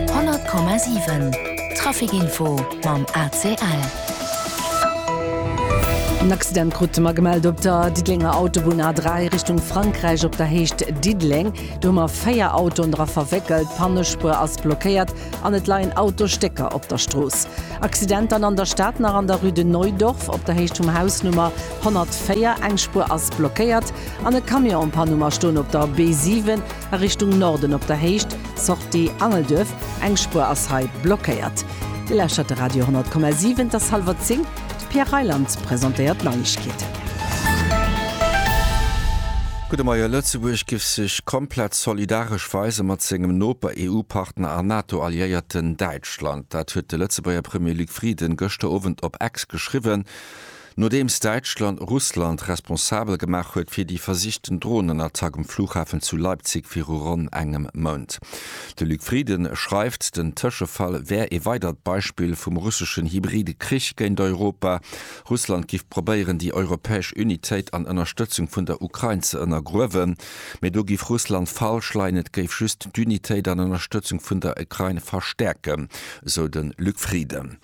100,7 Trafic Info mam ACL. En Accident krute mer gemellt op der Diddelenger Autobunn A3 Richtung Frankräich op der Héicht Diddeleng. Do hu mer véier Autoen dra verwéckelt. D'Pannespuer ass blockéiert an et leien Autostécker op der Strooss. Accident dann an der Stad nach an der Rue de Neudorf op der Héicht vum Haus Nummer 104. Eng Spuer ass blockéiert an e Camion an e Paar Nummer stoen op der B7. a Richtung Norden op der Héicht, Sortie Angelduerf, eng Spuer ass hei blockéiert. Dir lauschtert de Radio 10,7, et ass hallwer 10, de Pierre Reyland presentéiert d'Neiegkeeten. Gudde Moie, Lëtzebuerg giff sech komplett solidaresch weise mat sengem Noper, EU-Partner a NATO-Alliéierten Däitschland. Dat huet de Lëtzebuerger Premier Luc Frieden gëschter Owend op X geschriwwen. Nodeems Däitschland Russland responsabel gemaach huet fir déi versichten Dronenattack um Flughafen zu Leipzig viru ronn engem Mount. De Luc Frieden schreift, den Tëschefall wär ee weidert Beispill vum russeschen hybride Krich géint Europa. Russland giff probéieren, déi europäesch Unitéit an Ënnerstëtzung vun der Ukrain ze ënnergruewen. Mee do giff Russland falsch leien, et géif just d'Unitéit an Ënnerstëtzung vun der Ukrain verstäerken, esou de Luc Frieden.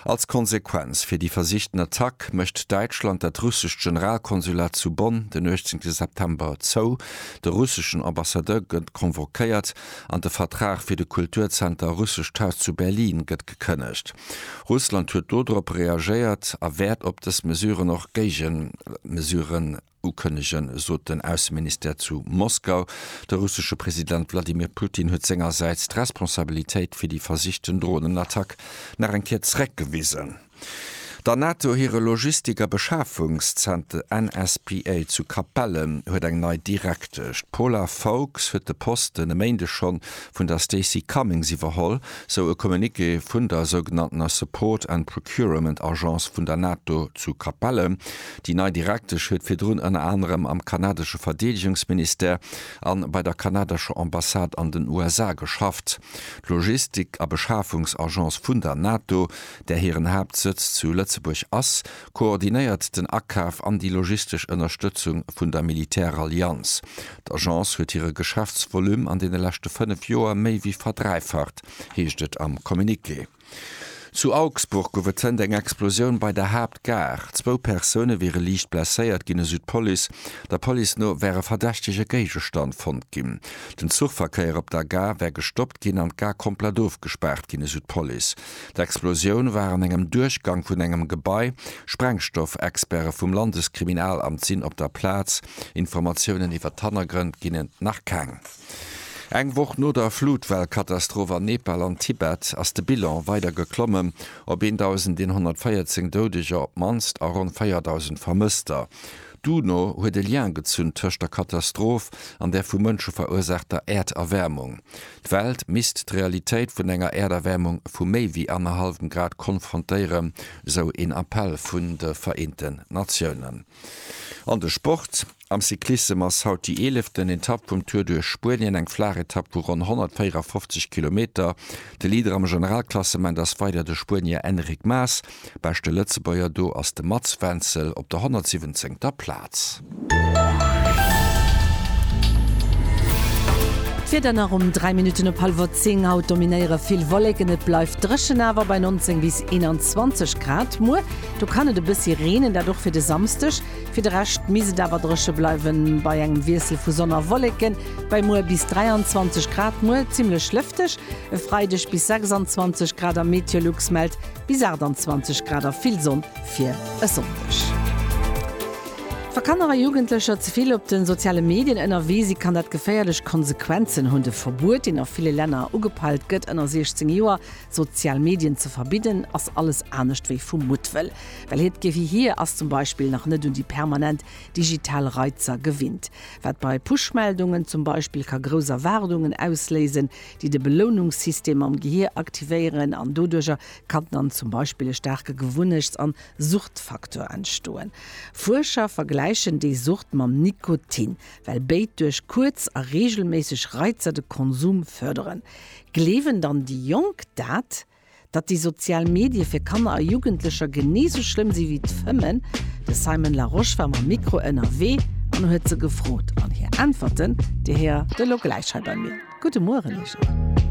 Als Konsequenz fir déi versichten Attack mécht Däitschland dat russescht Generalkonsulat zu Bonn den 18 September zou, de russeschen Ambassadeur gëtt convoquéiert an de Vertrag fir de Kulturzenter Russescht Haus zu Berlin gëtt gekënnegt. Russland huet dodrop reagéiert a wäert op dës Mesuren och Géigemesuren Ukënnegen, sot den Ausseministère zu Moskau. De russesche President Wladimir Putin huet sengersäits d'Responsabilitéit fir déi versichten Dronenattack nach eng Kéier zeréckgewisen. Der NATO hire Logistik a Beschafungszenter NSPA zu Capellen huet eng nei Direktesch. D'Paula Foulkes huet de Posten e Méindeg schonn vun der Stacey Cummings iwwerholl, sou e Communiqué vun der sougenanntener Support and Procurement Agence vun der NATO zu Capellen. Déi nei Direktesch huet virdrun ënner anerem am kanadesche Verdeedegungsministère a bei der kanadescher Ambassade an den USA geschafft. D'Logistik a Beschafungsagence vun der NATO, där hiren Haaptsëtz zu Lëtzebuerg ass, koordinéiert den Akaf an déi logistesch Ënnerstëtzung vun der Militärallianz. D'Agence huet hire Geschäftsvolume an deene leschte fënnef Joer méi wéi verdräifacht, heescht et am Communiqué. Zu Augsburg gouf et zënter eng Explosioun bei der Haaptgare. Zwou Persoune wiere liicht blesséiert ginn, esou d'Police. Der Police no wär e verdächtege Géigestand fonnt ginn. Den Zuchverkéier op der Gare wär gestoppt ginn an d'Gare komplett ofgespaart ginn, esou d'Police. D'Explosioun war an engem Duerchgang vun engem Gebai. Sprengstoff-Experte vum Landeskriminalamt sinn op der Plaz. Informatiounen iwwer d'Hannergrënn ginn et nach keng. Eng Woch no der Flutwell-Katastroph an Nepal an Tibet ass de Bilan weider geklommen op 1.114 Doudeger op d'mannst a ronn 4.000 Vermësster. D'UNO huet e Lien gezunn tëscht der Katastroph an der vu Mënsche verursaachter Äerderwäermung. D'Welt misst d'Realitéit vun enger Äerderwäermung vu méi wéi annerhallwem Grad konfrontéieren, esou een Appell vun de Vereenten Natiounen. An de Sport. Am Cyclissem ass haut déi eeleften Etapp vum Tour duerch Spuenien, eng flaach Etapp vu ronn 154 Kilometer. De Leader am Generalklassement ass weider de Spuenier Enric Mas. Beschte Lëtzebuerger do ass de Mats Wenzel op der 117. Plaz. D'Wieder nach um 3 Minutten op hallwer 10. Haut dominéiere vill Wolleken, et bleift dréchen, awer bei 19 bis 21 Grad. Muer do kann et e bëssi reenen, dat och fir de Samsdeg. Fir de Rescht misst et awer dréche bleiwen, bei engem Wiessel vu Sonn a Wolleken bei muer bis 23 Grad. Muer zimmlech lëfteg, e Freideg bis 26 Grad a Meteolux mellt bis 28 Grad a vill Sonn fir e Sonndeg. Wa Kanner a Jugendlecher ze vill op de soziale Medien ënnerwee si, kann dat geféierlech Konsequenzen hunn. De Verbuet, deen a ville Länner ugepeilt gëtt, ënner 16 Joer sozial Medien ze verbidden, ass alles anescht wéi vu Muttwëll. Well hiert Gehier ass zum Beispill nach net un déi permanent digital Reizer gewinnt, wat bei Push-Meldungen zum Beispill ka grouss Erwaardungen ausléisen, déi de Belounungssystem am Gehier aktivéieren an doduercher kann dann zum Beispill e staarke Gewunnechts an Suchtfaktor entstoen. Fuerscher vergläichen déi Sucht mam Nikotin, well béid duerch kuerz a reegelméisseg Reizer de Konsum fërderen. Gleewen dann déi Jonk dat? Datt déi sozial Medie fir Kanner a Jugendlecher genee sou schlëmm si wéi d'Fëmmen? De Simon Larosche war mam Mikro ënnerwee an huet se gefrot. An hir Äntwerten, déi héiert Dir elo gläich hei bei mir. Gudde Mueren, Iech och!